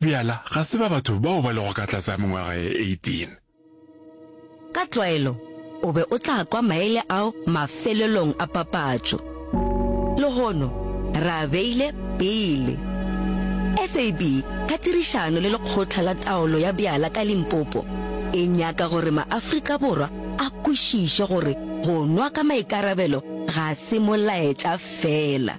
Bjala ga se ba batho bao ba lego ka tlase ga mengwaga ye 18. Ka tlwaelo, o be o tla kwa maele ao mafelelong a papatšo. Lehono re a beile pele. SAB ka tirišano le Lekgotla la Taolo ya Bjala ka Limpopo e nyaka gore maAfrika Borwa a kwešiše gore go nwa ka maikarabelo ga se molaetša feela,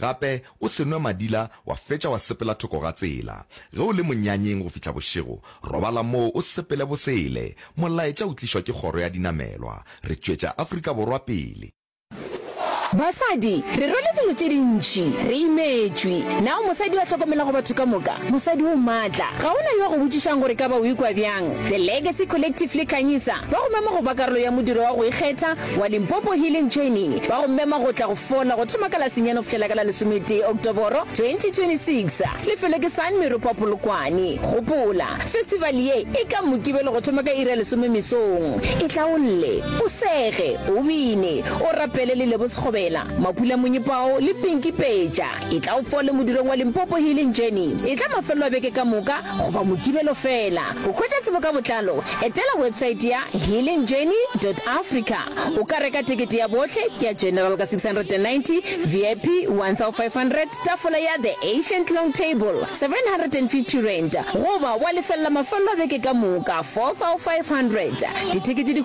Gape o se nwe madila wa fetša wa sepela thoko ga tsela. Ge o le monyanyeng go fihla bošego, robala moo o sepele bosele. Molaetša o tlišwa ke kgoro ya dinamelwa. Re tšwetša Afrika Borwa pele. Basadi, re rwele dilo tše dintši, re imetšwe. Na o mosadi yo a hlokomelago batho ka moka? Mosadi o matla. Ga go na yo a go botšišago gore e ka ba o ikwa bjang. The Legacy Collective le Khanyisa ba go mema go ba karolo ya modiro wa go ikgetha wa Limpopo Healing Journey ba go mema go tla go fola go thoma ka la senyane go fihlela ka la lesometee Oktoboro 2026. Lefelo ke San Meropa Polokwane. Gopola, festival ye e ka Mokibelo go thoma ka iri ya lesome mesong. E hlaolle, o sege, o bine, o rapele le Lebo Sekgobela, Mapula Monyepao le Pinky Peja. Etla o fole modulong wa Limpopo Healing Journey. Etla mafelelo a beke ka moka goba Mokibelo feela. Go hwetša tsebo ka botlalo, etela websaete ya healingjourney dot africa. O ka reka tekete ya bohle, ke ya General ka 690, VIP 1500, tafola ya The Ancient Long Table 750 rand, goba wa lefella mafelelo a beke ka moka 4500. Ditekete di.